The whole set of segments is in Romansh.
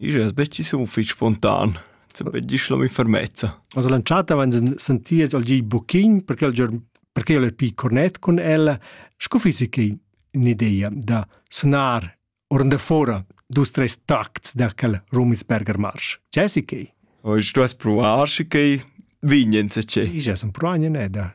Igl es be chi sun fich spontan, sape gist l'hom in fermezza. As lanciata avant senties al gi buchin perché il giorn perché el è più cornet con ella, sco fisi che un'idea da sunar orn da fora dus tres tacts da quel Rumisberger Marsch. C'è si che? Oggi tu has provar, che vignen se c'è. Io sun provan ne da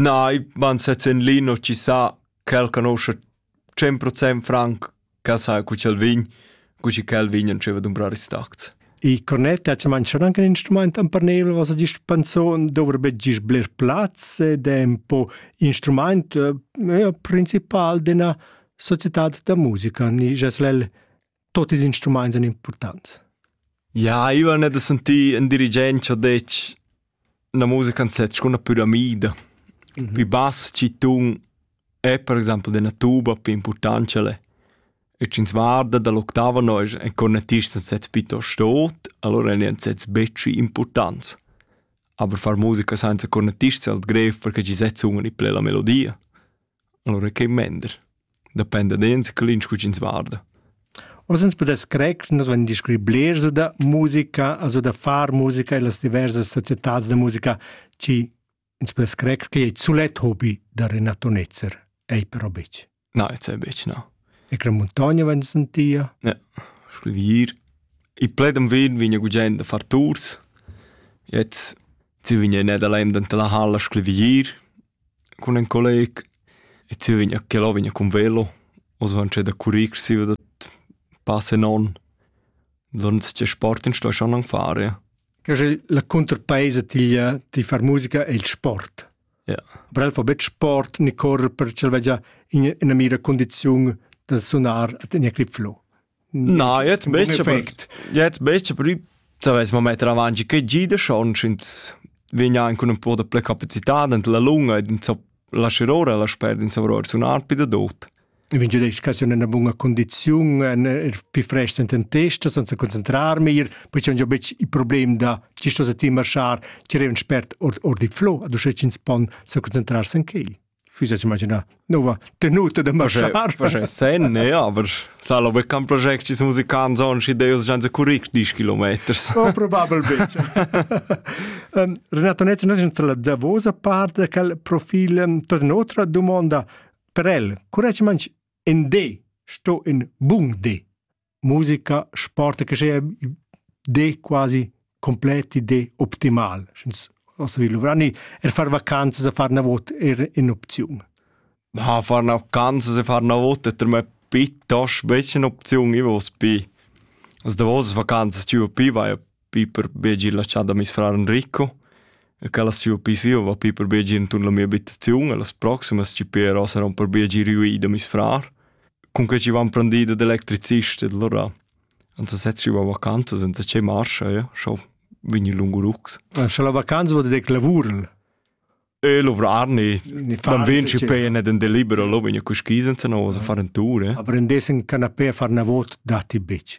Nei, man sez en lino ci sa ch'el conosce 100% franc ch'el sa cu ch'el vegn, cu chi ch'el vegn e dscheva dumbrar ils tacts. I cornet ha manchà anche un instrument per nel, was er gist pensò, dovrebbe gist bler plaz ed è un po instrument eh, principal d'una società da musica. Ni, jas l'el Tot ils instruments èn impurtants. Ja, Ivan è da sentir in dirigent che ha detto una musica in set con una piramide. Mm -hmm. Più bass ci tun è per esempio della tuba più importante le. E ci guarda dall'ottava noi en cornettista in sets piuttosto tot, allora è in sets betri importanti. Aber far musica senza cornettista è halt grev perché ci sets un in plena melodia. Alura ch'ei mender. Dependa d'ins clint scu ch'ins varda. Oz ins pudess crer che nus vain discurri blers da musica, also da far musica e las diversas societads da musica, chi ins pudess crer che ei sulet hobi da Renato Netzer. Ei però betg. No, jetzt ei betg, no. E che muntogna vain sentia? Ja, scrivir. I pledem vin vigna gugent da far tours. Jetzt si vigna in Nederland anta la halla scrivir. Cun ün colleg e tügna che ella vegna cun velo. Nus vain sto da currir siva da pass e non. Donns tge sport ins sto schon am fare. Che sche la cunterpaisa tiglia ti far musica è il sport. Ja. Aber el fa betg sport ni correr per ch'el vegia in, ina mira condiziun da sunar ad ina clipflo. Na, jetzt möchte perfekt. Jetzt möchte prima saves mo metter avanti che gida schon schins vegna anche un po' de ple capacità ent la lunga ed in so la scirora la sper in savror sunar pi da dot. E vegn giuda educazione in bunga condiziun en er pi fresh enten testa senza concentrarmi ir poi c'è un bec il problem da ci sto se ti marschar ci è un spert or or di flow ad uscecins pon se concentrarsi in quel füsses imaginar nova tenuta da marschar sen ne aber sala be kan project is musikan zon si deus jan se curric 10 kilometers oh, probabilmente um, Renato Netz nos la davosa parte cal profil um, tot notre domanda per el curec manch in de sto in bung de musica, sport che sia de quasi completi de optimal. Sch'ins ossa vi luvrani er far vacanzas a far na vot er in opziun. Ma far na vacanzas a far na vot è per me piuttosto becca un'opzione, ich was bei. Also da was vacanzas tu più vai Piper Begi laschà da mes frar Enrico e ch'el as sia pisio va Piper Begi inturn la mia abitaziun e las proximas chi però saron per Begi riuì da meis frar. Cun que chi van prendì dad electricist ed allura ans sezzi va vacanzas senza che marcha, ja, schau vegni lungo rucks. Scha la vacanza vod dec lavurl. E luvrar ni. Dann vinci pe ne den delibero lo vegni cu schisen senza no a far en tour. eh. Aprendessin canapé a far na vot datti bitch.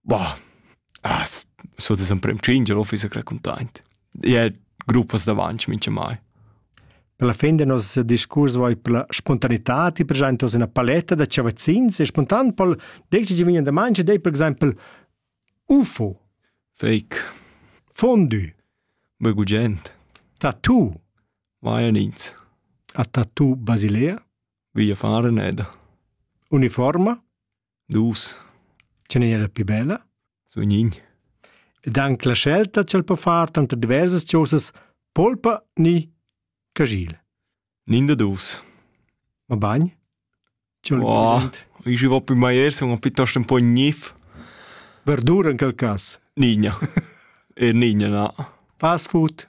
Boah, ah, so das emprem tschingia l'office è raccontaint. E gruppas davanti minchamai. Per la fin del nostro discurs vai per la spontaneità, ti per esempio una paletta da chavazzins e spontan pol decidi di vigna da mangia dei per esempio UFO. Fake. Fondue. Begugent. Tattoo. Vaiolins. A tattoo Basilea. Via fare neda. Uniforma. Dus. Ce n'è era più bella? Su nin. Ed anche la scelta c'el po far tanto diversas cosas polpa ni cagil. Nin da dus. Ma bagn? Wow. Ich war bei Meiers und piuttosto un po' gnif. Verdura in quel cas? Nigna. e nigna, na. Fast food?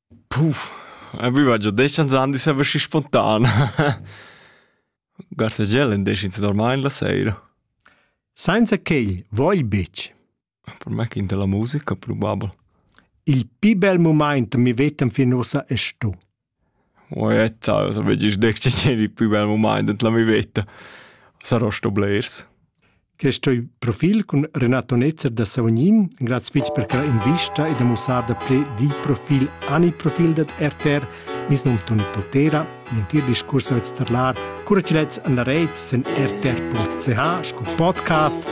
Puh, aveva già deschens ans avessi spontan. Gartegel in deschins normain la seira. Sainza quel vogl betg. Per me che la musica probabel. Il più bel moment mi vetem fin ossa è sto. Oetta, so vegis dec ceceri il più bel moment la mi vetta. Sarò sto blers. Questo profil cun Renato Netzer da Savognin, grazie fitch per quella invista e da mussar da ple di profil ani profil dat RTR, mis num Toni Poltera, l'entir discurs avete starlar, cura ci letz an la reit sen rtr.ch sco podcast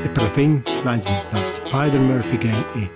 e per la fin, klein sind das Spider-Murphy Gang e